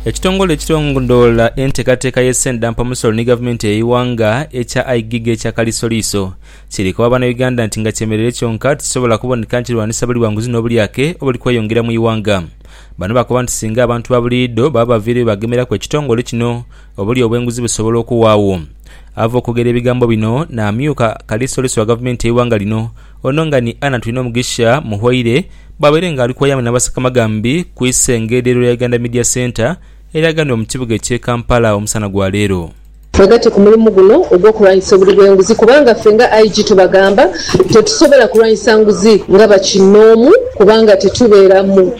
Ekitongole ekilondoola enteekateeka y'esente dha mpamusolo ni gavumenti ey'eighanga ekya Igigi ekya Kalisoliiso kiri koba Bannayuganda nti nga kyemereire kyonka tikisobola kuboneka nti kirwanisa buli bwa nguzi n'obulyake obuli kweyongera mu ighanga. Bano bakoba nti singa abantu ba buliidho baba baviireyo bagemeraku ekitongole kino obulyo obw'enguzi busobola okuwaagho. Ava okwogera ebigambo bino n'amyuka Kalisoliiso wa gavumenti y'eighanga lino Ono nga ni Anna Twinomugisha Muhwaire bwabaire nga ali kwayama na Basakamagambi ku isengeedhero lya Uganda Media Centre eryaganibwa mu kibuga ekye Kampala omusana gwa leero. Twegatte ku mulimu guno ogw'okulwanyisa obuli bw'enguzi kubanga ffe nga IG tubagamba tetusobola kulwanyisa nguzi nga bakinnoomu kubanga tetubeeramu.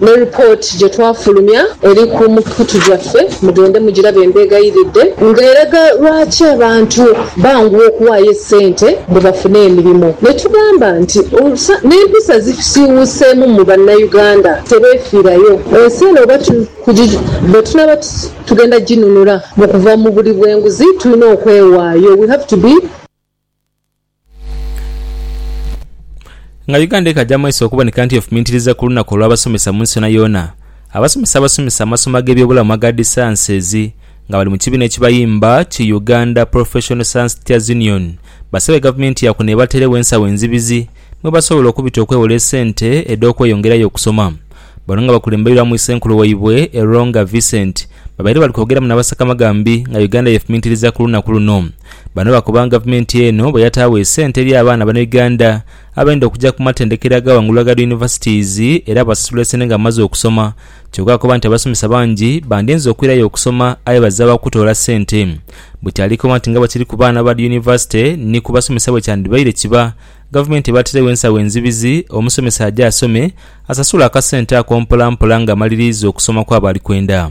Ne ripooti gye twafulumya eri ku mikutu gyaffe mugende mugirabe mbeghayiridde, nga eraga lwaki abantu banguwa okuwaayo essente mbu bafune emirimo. Ne tugamba nti olusa n'empisa zisiiwuuseemu mu Bannayuganda tebeefiirayo. Ensi eno oba tu kugi bwe tunaaba tu tugenda ginunula mu kuva mu buli bw'enguzi tulina okwewaayo, we have to be. Nga Uganda ekaja mu maiso okuboneka nti efumintiriza ku lunaku olw'abasomesa mu nsi yoonayoona, abasomesa abasomesa amasomo ag'ebyobulamu aga dhisaansizi nga bali mu kibiina ekibayimba ki Uganda Professional Science Teachers Union basabye gavumenti ya kuno ebateeregho ensawo enzibizi mwe basobola okubita okwewola esente edh'okweyongerayo okusoma. Bano nga bakulembeirwamu Issenkulu waibwe Eronga Vincent babaire bali kwogeramu n'abasakamagambi nga Uganda yefumintiriza ku lunaku luno. Bano bakoba nga gavumenti eno bweyataagho esente eri abaana bana Uganda abayenda okuja ku matendekero aga wangulu aga dhi Universities era basasula esente nga bamaze okusoma kyoka akoba nti abasomesa bangi bandinze okwirayo okusoma aye bazira wa kutoola sente buti alikoba nti nga bwekiri ku baana ba dhi University ni ku basomesa bwekyandibaire kiba gavumenti ebateregho ensawo enzibizi omusomesa aje asome asasule akasente ako mpola mpola nga amaliriiza okusoma kwaba alikwenda.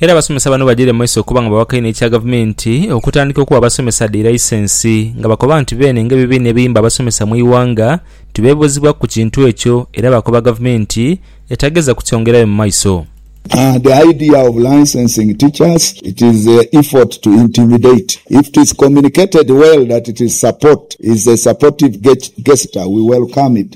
Era abasomesa bano bajaire mu maiso okuba nga bawaka inho ekya gavumenti okutandika okuwa abasomesa dhi laisensi nga bakoba nti beene nga ebibiina ebiyimba abasomesa mu ighanga nti bebuuzibwaku ku kintu ekyo era bakoba gavumenti etagheza kukyongerayo mu maiso. The idea of licensing teachers, it is a effort to intimidate. If it is communicated well that it is support is a supportive gesture we welcome it.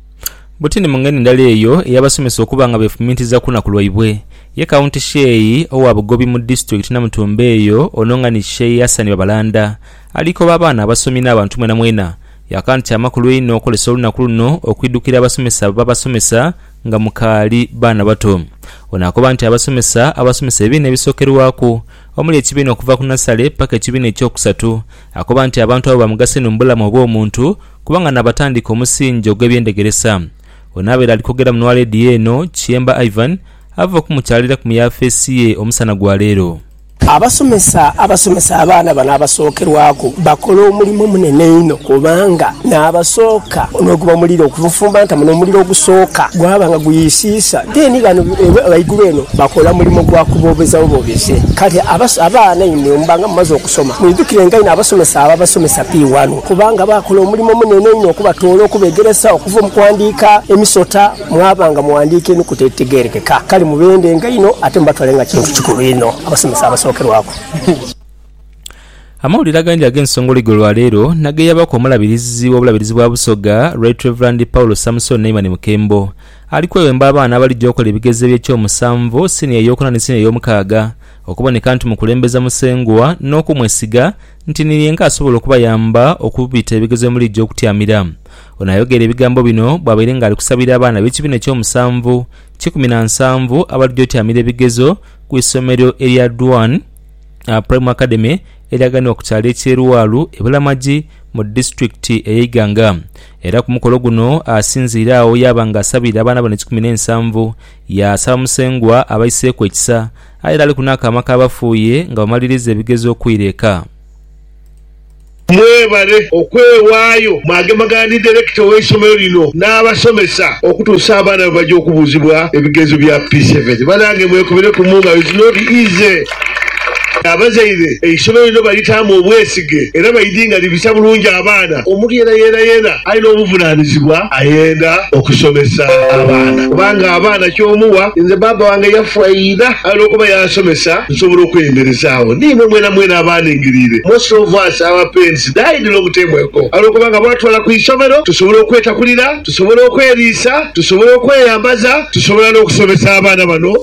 Butini mu ngeri ndala eyo eyabasomesa okuba nga befumintiza ku lunaku lwaibwe. Ye County Sheei owa bugobi mu Disitulikiti Namutumba eyo ono nga ni Sheei Hassan Babalanda ali koba abaana, abasomi n'abantu mwenamwena yaka nti kyamakulu einho okozesa olunaku luno okwidukira abasomesa ababasomesa nga mukaali baana bato. Ono akoba nti abasomesa abasomesa ebibiina ebisokerwaku omuli ekibiina okuva ku nasale paka ekibiina ekyokusatu akoba nti abantu abo bamugaso inho mu bulamu obw'omuntu Kubanga naabatandika omusingi ogw'eby'endegeresa. Ono abaire ali kwogera mu Nwa Leediyo eno, Kiyemba Ivan, ava okumukyaliraku mu yaafeesi ye omusana gwa leero. Abasomesa abasomesa abaana bano abasookerwaku bakola omulimo munene inho kubanga n'abasooka n'oguba omuliro okubufumbanta muno omuliro ogusooka gwaba nga guyisiisa deni bano ghaigulu eno bakola mulimo gwa kuboobeza buboobeze kale abaana imwe muba nga mumaze okusoma mwidhukirenga inho abasomesa ababasomesa P1. Kubanga baakola omulimo munene inho okubatoola okubegeresa okuva mu kuwandiika emisota mwaba nga mughandiika enukuta edhitegeerekeka. Kale mubendenga inho ate mubatwale nga kintu kikulu inho abasomesa abasookerwaku. Amawulire agandi ag'ensongoloi go lwa leero nageyabaku omulabirizi w'obulabirizi bwa Busoga Right Rev Paul Samson Naiman Mukembo ali kwewemba abaana abalija okola ebigezo eby'ekyomusanvu, siniya eyokuna ni siniya eyomukaaga okuboneka nti mukulembeza Musengwa n'okumwesiga nti ni yenka asobola okubayamba okubita ebigezo bye muliidha okutyamira. Ono ayogeire ebigambo bino bwabaire nga ali kusabira abaana b'ekibiina eky'omusanvu kikumi na nsanvu abalidha otyamira ebigezo ku isomero erya Dwan Primary Academy eryaganibwa ku kyalo eky'e Luwaalu e Bulamagi mu disitulikiti eye Iganga era ku mukolo guno asinziire agho yaaba nga asabiire abaana bano ekikumi n'ensanvu yaasaba Musengwa abaiseeku ekisa Aye era ali ku n'akaama k'abafu ye nga bamalirizza ebigezo okwira eka. Mwebale okwewaayo mwagemagana ni Direkita w'eisomero lino n'abasomesa okutuusa abaana lwebaja okubuuzibwa ebigezo bya P seven. Banange mwekubire ku mungalo it's not easy. Abazaire, eisomero lino balitaamu obwesige era baidinganibisa bulungi abaana. Omuntu yenayena yena Alina obuvunanizibwa ayenda okusomesa abaana kubanga abaana kyomuwa nze bbaabba wange yafa ira aye olwokuba yansomesa nsobola okweyemerezaagho niimwe mwenamwena abaaningiriire Most of us our parents died long time ago aye olwokuba nga baatutwala ku isomero tusobola okwetakulira, tusobola okweriisa, tusobola okweyambaza, tusobola n'okusomesa abaana bano.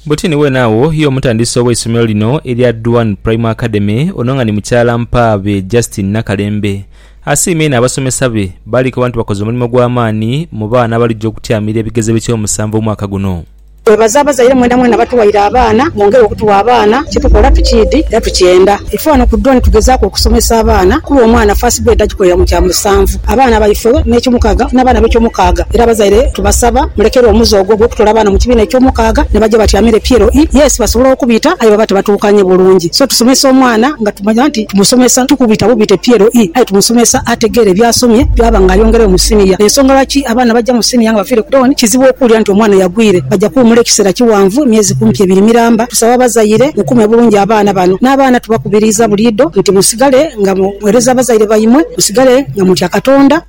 Butini weene agho y'omutandisi ow'eisomero lino erya Duan Primary Academy ono nga ni mukyala mpaabe Justine Nakalembe. Asiima inho abasomesa be baali koba nti bakoze omulimo gwa maani mu baana abalija okutyamira ebigezo eby'ekyomusanvu omwaka guno. Twebaza abazaire mwena mwena abatuwaire abaana, mwongere okutuwa abaana, kyetukola tukiidhi era tukyenda. Ife ghano ku Duan tugezaaku okusomesa abaana kuba omwana first grade agikolera mu kyamusanvu, abaana baifewe n'ekyomukaaga n'abaana b'ekyomukaaga era abazaire. Tubasaba mulekerwe omuze ogwo ogw'okutoola abaana mu kibiina eky'omukaaga ne baja batyamira epiero ii. Yes, basobola okubita aye baba tibatuukanye bulungi. So tusomesa omwana nga tumanya nti tumusomesa, tikubita bubita epiero ii aye tumusomesa ategeere by'asomye byaba ng'ayongeregho mu siniya. Y'ensonga lwaki abaana abaja mu siniya nga bafiire ku tawuni kizibu okuwulira nti omwana yagwire. Baja kuwumula ekiseera kiwanvu, myezi kumpi ebiri miramba. Tusaba abazaire mukuume bulungi abaana bano. N'abaana tubakubiriiza buliidho nti musigale nga mugheereza abazaire baimwe, musigale nga mutya Katonda.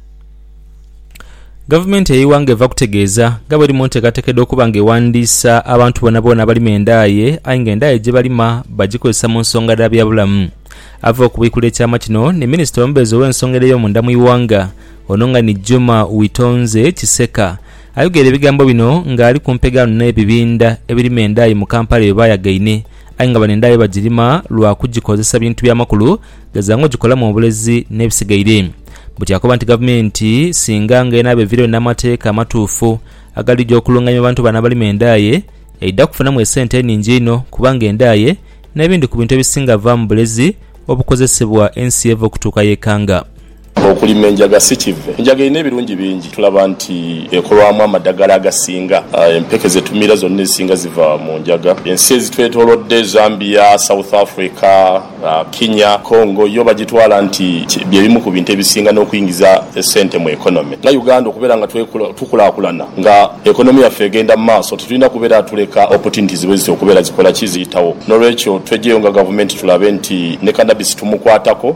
Gavumenti ey'eighanga eva kutegeeza nga bweri mu nteekateeka edh'okuba nga ewandiisa abantu boonaboona abalima endaaye aye nga endaaye gyebalima bagikozesa mu nsonga dha byabulamu. Ava okubwikula ekyama kino ni minisita omubeezi ow'ensonga edh'eyomunda mu ighanga ono nga ni Juma Witonze Kiseka ayogeire ebigambo bino nga ali ku mpegaano n'ebibinda ebirima endaaye mu Kampala byebayagaine aye nga bano endaaye bagirima lwakugikozesa bintu byamakulu Gheza ng'ogikolamu obulezi n'ebisigaire. Buti akoba nti gavumenti singa nga enaaba eviireyo n'amateeka amatuufu agalija okulungamya abantu bano abalima endaaye, eidha kufunamu esente eningi einho kubanga endaaye n'ebindi ku bintu ebisinga vaamu bulezi obukozesebwa ensi yeva okutuuka y'ekanga. Okulima enjaga si kive. Enjaga erina ebirungi bingi. Tulaba nti ekolwamu amadhagala agasinga. Empeke ze tumira zonna ezisinga ziva mu njaga. Ensi ezitwetoolodde, Zambia, South Africa, Kenya, Congo, yo bagitwala nti bye bimu ku bintu ebisinga n'okuingiza esente mu economy. Nga Uganda okubeera nga tukulaakulana, nga economy yaffe egenda mu maaso, titulina kubeera tuleka opportunities bwezityo okubeera zikola ki? Ziyitawo. N'olwekyo twegyeyo nga gavumenti tulabe nti ne cannabis tumukwatako.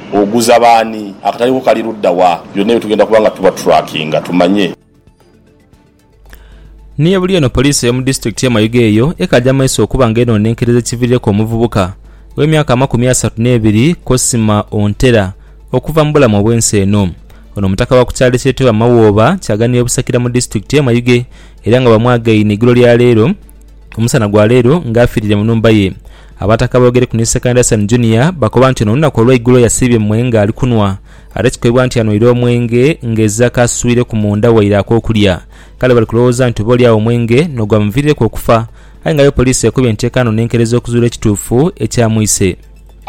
Oguza b'ani? Akatale ko kali ludda wa? Byonna ebyo tugenda kuba nga tubatrackinga tumanye. Ni buli eno poliisi ey'omu disitulikiti y'e Mayuge eyo ekaja maiso okuba nga enonenkereza ekiviirireku omuvubuka ow'emyaka amakumi asatu n'ebiri Cosima Ontera okuva mu bulamu obw'ensi eno. Ono mutaka wa ku kyalo ekyetebwa Mawooba kyaganira e Busakira mu disitulikiti y'e Mayuge era nga bamwagaine eigulo lya leero Ku musana gwa leero nga afiirire mu nhumba ye, Abataka boogereku ni Sekandason Junior bakoba nti ono olunaku olweigulo yasiibye mwe nga ali kunhwa ate kikoibwa nti anhwire omwenge nga ezira kaaswireku munda waire akokulya kale bali kulowooza nti oba oli agho omwenge n'ogwamuviirireku okufa aye nga aye poliisi ekobye nti ekaanoona enkerezo okuzuula ekituufu ekyamwise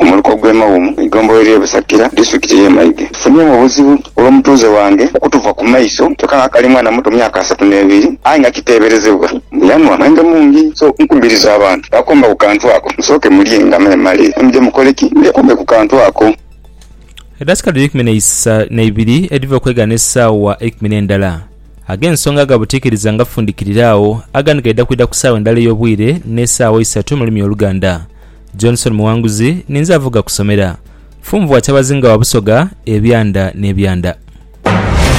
Omuluka ogw'e Mawumu, eigombolola ery'e Busakira, disitulikiti ey'e Maige. Tufunyeemu obuzibu olw'omutuuze wange okutuva ku maiso kyoka nga akali mwana muto myaka asatu n'ebiri aye nga kiteeberezebwa mbu yanhwa mwenge mungi. So nkubiriza abantu bakomba ku kantu ako musooke mulye nga mwemale then muje mukole ki? Mwekombe ku kantu ako. Edasika dhiri eikumi n'eisa n'eibiri edhiva okwegana esaawa eikumi n'endala. Ag'ensonga aga butiikiriza ngafundikirira agho agandi gaidha kwidha ku saawa endala ey'obwire n'esaawa isatu mu lulimi oluganda. Johnson Muwanguzi ninze avuga kusomera. Funvua Kyabazinga wa Busoga ebyanda n'ebyanda.